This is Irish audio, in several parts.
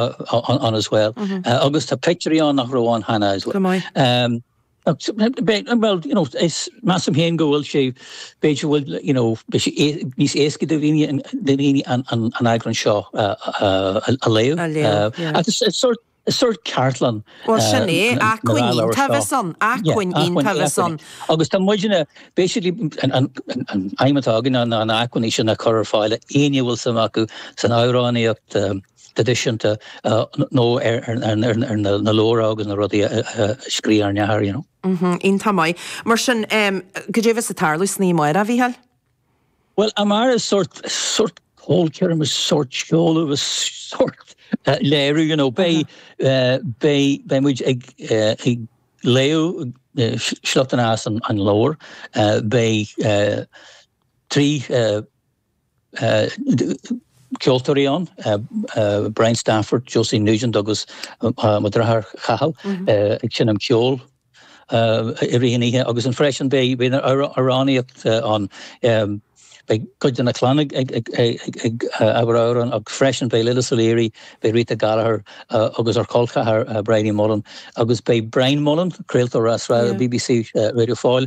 on as well. Agus tá peictiúirí ann nach raibh ann cheana as well. Bhuel, you know, is, measaim féin go bhfuil sé, b'fhéidir go bhfuil, you know, beidh sé níos éasca do dhaoine an eagrán seo a léamh. A léamh, yeah. Ach is sort, is sort ceardlann. Bhuel sin é, acmhainní taobh is ann, acmhainní taobh is ann. Agus tá muidne, basically, an aidhm atá againn na hacmhainní sin a chur ar fáil, éinne a bhfuil suim acu san amhránaíocht, traidisiúnta nó ar na leabhair agus na rudaí a scrígh ár ndeartháir, you know. Iontach maith. Mar sin, cad é bheas ag tarlú san oíche amárach, a Mhícheáil? Bhuel, amárach is is sórt ceolchoirm, is sórt seoladh, is sórt léiriú, you know. Beidh, beidh, beidh muid ag léamh sliochtanna as an leabhar. Beidh trí. ceoltóirí ann, Brian Stafford, Josie Nugent agus mo dheartháir Chathal ag seinm ceoil i rith an oíche agus freisin beidh amhránaíocht ann. Beidh cuid de na clann ag abairt amhrán agus freisin beidh Lillis Ó Laoire, beidh Rita Gallagher agus ár chol ceathrair Bridie Mullen agus beidh Brian Mullen, craoltóir ar an bbc Radio Foyle,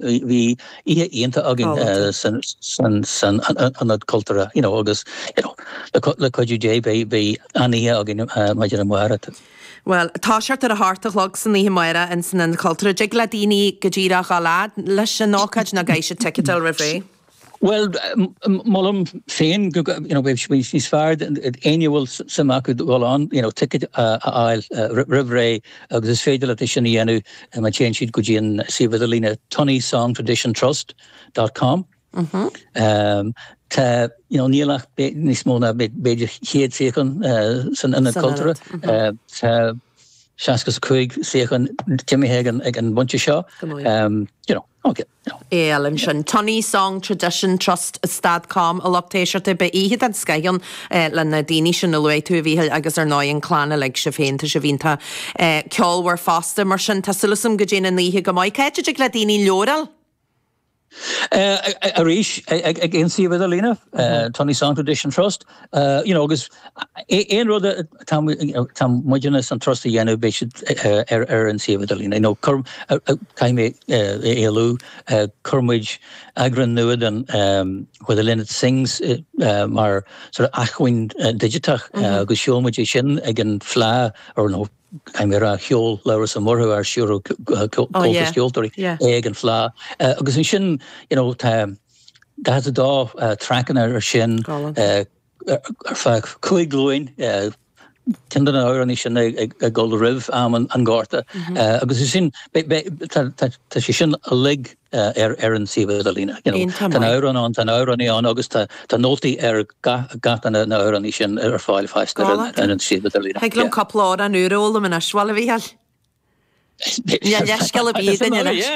Bhí oíche iontach againn san Ionad Cultúrtha you know agus you know le cuidiú Dé beidh an-oíche againn maidin amárach. Bhuel, tá sé ar a hocht a chlog san oíche amárach insan Ionad Cultúrtha. Dtig le daoine go díreach dhul fhad leis an ócáid nó caithfidh siad ticéad a fháil roimh ré. Bhuel, molaim féin go mbeidh sé níos fearr d'éinne a bhfuil suim acu dul ann, you know, ticéad a fháil roimh ré agus is féidir leat é sin a dhéanamh má théann siad go dtí an suíomh idirlíne Tunney Song Tradition Trust dot com. Tá, you know, níl ach níos mó ná b'fhéidir chéad suíochán san ionad cultúrtha. Tá seasca is a cúig suíochán imithe ag an bpointe seo, you know. Ok, no. Go leor ansin. Tunney Song Tradition Trust dot com a lucht éisteachta, beidh oíche den scoith ann leis na daoine sin a luaigh tú, a Mhícheáil, agus ar ndóigh an clann uilig, sibh féin, tá sibh iontach ceolmhar fosta. Mar sin, tá súil agam go dtéann an oíche go maith. Cá háit a dtig le daoine an leabhar a fháil? Arís, ag an suíomh idirlíne, Tunney Song Tradition Trust. You know, agus aon rud atá muidne san trust a dhéanamh beidh siad ar an suíomh idirlíne, you know, cur, caithfidh mé a lua, chuir muid eagrán nua den Where the Linnets Sing mar sort of acmhainn digiteach agus sheol muid é sin ag an fleá, or nó caithfidh mé a rá sheol Labhrás Ó Murchú ard-stiúrthóir comhaltas ceoltóirí é ag an fleá. Agus ansin, you know, tá. 42 traiceanna air sin ar feadh cúig ghlúin, ceann de na hamhránaí sin ag dul roimh am an Ghorta, agus is sin, tá sé sin uilig ar an suíomh idirlíne. Tá na hamhráin ann, tá na hamhránaí ann agus tá nótaí ar gach duine de na hamhránaí sin ar fáil fosta ar an suíomh idirlíne. Thig liom cúpla amhrán úr a fhoghlaim anois, Bhal, a Mhícheáil! Leithscéal ar bith ann anois.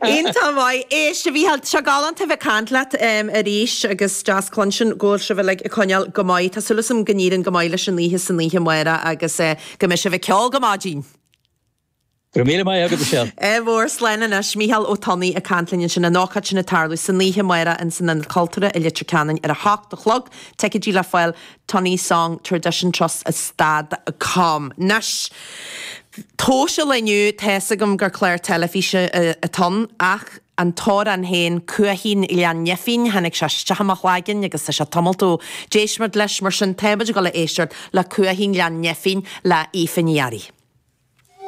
Iontach maith. Éist, a Mhícheáil, seo galánta a bheith ag caint leat arís agus deas cluinstin go bhfuil sibh uilig ag coinneáil go maith. Tá súil is agam go n-éiríonn go maith leis an oíche san oíche amárach agus go mbeidh sibh ag ceol go maidin! Go raibh míle maith agat, Michelle. Ádh mór, slán anois. Mícheál Ó Tonnaigh ag caint linn ansin, an ócáid sin ag tarlú san oíche amárach, in san Ionad Cultúrtha i Leitir Ceanainn ar a hocht a chlog. Ticeidí le fáil. Tunney Song Tradition Trust stad com. Anois, tomhas an lae inniu, tá fhios agam gur clár teilifíse atá ann, ach an t-amhrán féin, Cuaichín Ghleann Neifín, tháinig sé isteach i mo chloigeann agus tá sé tamalt ó d'éist muid leis, mar sin, táimid ag dul a éisteacht le Cuaichín Ghleann Neifín le Aoife Ní Fhearraigh.